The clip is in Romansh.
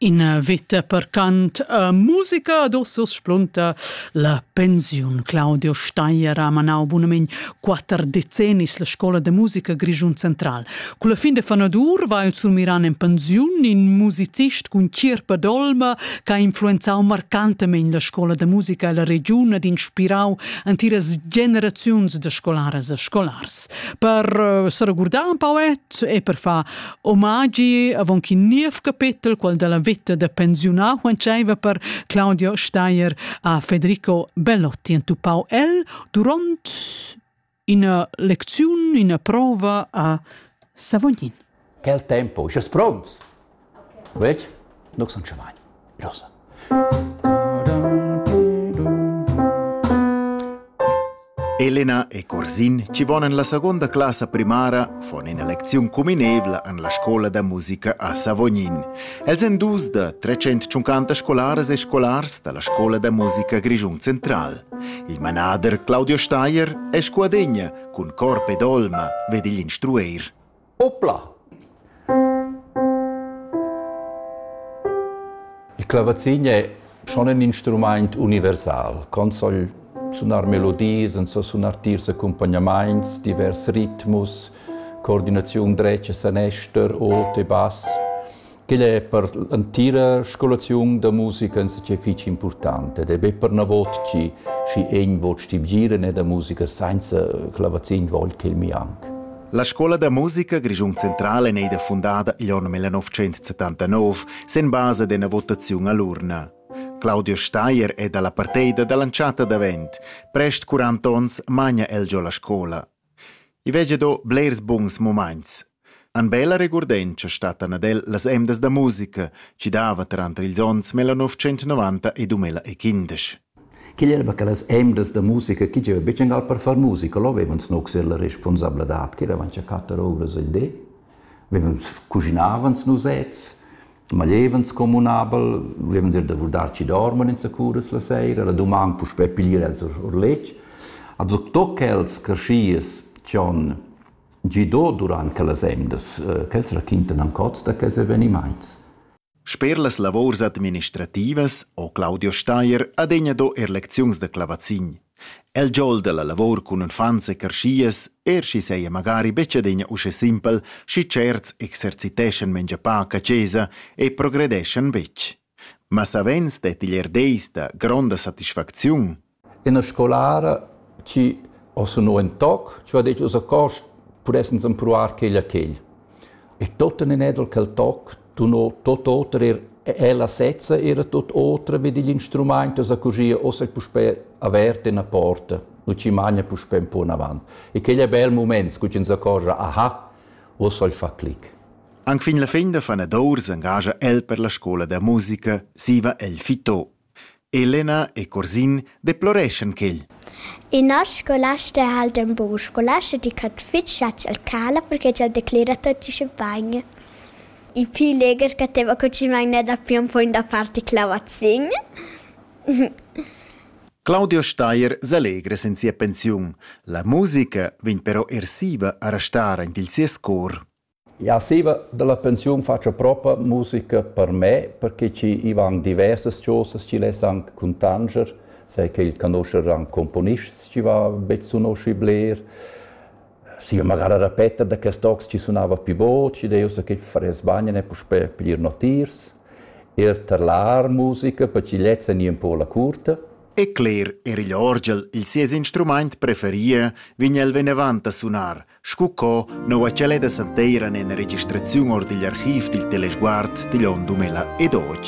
Ina vita percant a musica ad Ursus splunta la pensiun. Claudio Steier ha manau bunament quatter decennis la scola de musica Grischun Central. Con la fin de fanadur va il Surmiran en pensiun in musicist cun chirpa d'olma che ha influenzau marcantamein la scola de musica e la regiun ed inspirau entiras generaziuns de scolaras e scolars. Per eh, seregurdar un pauet e per far Omagi avon ch'in niev capetel, quel dalla veta da pensiunar, quentscheiva per Claudio Steyer a Federico Bellotti entupau el duront ina lecziun, ina prova a Savognin. Quel tempo, eschas pronts? Vec, nux sun chavagn. Los. Elena e Corsin, ci von en la seconda classa primara, von ina lecziun cuminevla an la scola da musica a Savognin. Els en dus da 350 scolaras e scolars da la scola da musica Grischun Central. Il manader Claudio Steier è scuadegna cun corp ed olma, ved igl instrueir. Opla! Il clavazin è schon in instrumaint universal. Con so'l sunar melodias, en so sunar tiers accumpagnamaints, divers ritmus, coordinaziun dretg e sanester, ot e bass. Quel è per l'entira scolaziun da musica insatge fitg impurtant ed è be pernavot chi schi egn vot stibgieren e da musica sainza clavazin vogl ch'el mi anc. La scola da musica Grischun Central è neida fundada igl onn 1979 sen basa d'ena votaziun all'urna. Claudio Steier è dalla parteida dall'entschatta davent. Prest 40 onns magna el giò la scola. I vegia do blers buns mumaints. An bella regurdentscha stattan ad el las emdas da musica chi dava tranter ils ons 1990 e 2015. Quel era che las emdas da musica chi gieva be gal per far musica, lo vevan snuxer la responsabladad, che eravans a quatter ovras al di, vevan cuginavans nusets, maglievens communabel, vievan ir da vurdar ci dorman insacuras la sera, la duman puspè piglier els or letg. Also toc els creschies cion gido durant quellas emdas, eh, quels raquintan ancot da quels evenimaints. Sper las lavors administrativas ho Claudio Steier adegna do er lecziuns da clavazin. El giol dalla lavor cun uffants e carschias, er sch'i seia magari betg adina uschè simpel, schi certs exerciteschan mengia pac a chesa e progredeschan betg. Ma savens detti er deis da gronda satisfacziun. Ina scolara chi os no in toc, chi ha detg uss a cors pudessens empruar quegl a quegl. E tot en in edel quel toc Tuno tot oter er ella sezza era tot otra med igl instrumaint osa così ossa puspè avert ena porta. Nu ci magna puspè un po avant. E quel è bel moment, cu ci s'accorgia, aha, ossa il fa clic. Anquin la fin da fanadour s'engagia el per la scola da musica, siva el fito. Elena e Curzin deploreschan quel. In noss scolasta ha el d'ün bun scolasta di ch'ha fich chatsch al cala perché ch'el declera tuot usche bain. Il pü legher ch'ateva cucinà gnà dapi ün poin da parti clavazin. Claudio Steier s'allegra sen sia pensiun. La musica vegn però ersiva a restar aint il sies cor. Jau stiva da la pensiun fatscha propa musica per me, perche chi i van diversas chosas chi less anc cuntanscher, sai che il conoscher anc componists chi va be sunoschi bler. Stiva magari a repeter da quest tocs chi sunava pi bod, schi deu so che faress bagn e puspè piglier notiers. Ir tar l'art musica per chi lezza gnir un po la curta. E cler, er igl orgel, il sies instrumaint preferie, vign el venevant a sunar, Scu co noua ch'el è da santeir an ena registraziun or digl archiv dil Telesguard digl onn 2012.